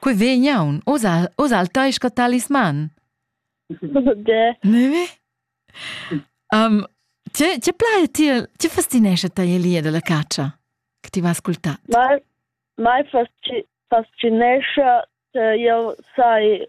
Quei vegn aun, oz oz al tai sco talisman. Ge. Ne? Um, tge, tge plai ti, tge fascinesce tai elia dalla caccia che ti vas ascoltat? Mai, mai fascinesce, io sai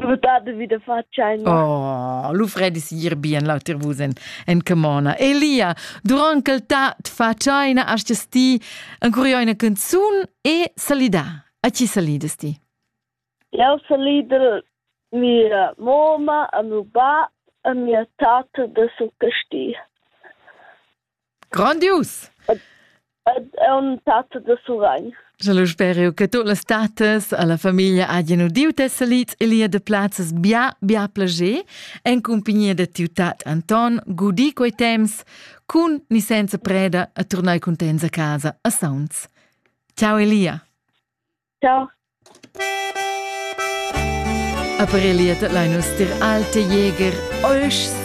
Svudato vi da facciaina. Oh, lu fredi sigir bien lauter vus en, en camona. Elia, durant che ta t facciaina astas ti ancora una canzun e salida. A chi salidas ti? Eu salida mia moma a meu bab a mia tata da su Casti. Grandius! Ed è un tat da Surrein. Sche lu speriu che tu las tatas alla famiglia hagien udiu tes salits e lia de plazzas bia, bia plager en cumpagnia de tiu tat Anton gudi quei temps cun ni senza preda a turnai contents a casa a Sauns. Ciao Elia. Ciao. Aber Elia, dat lein uns dir alte Jäger, euchs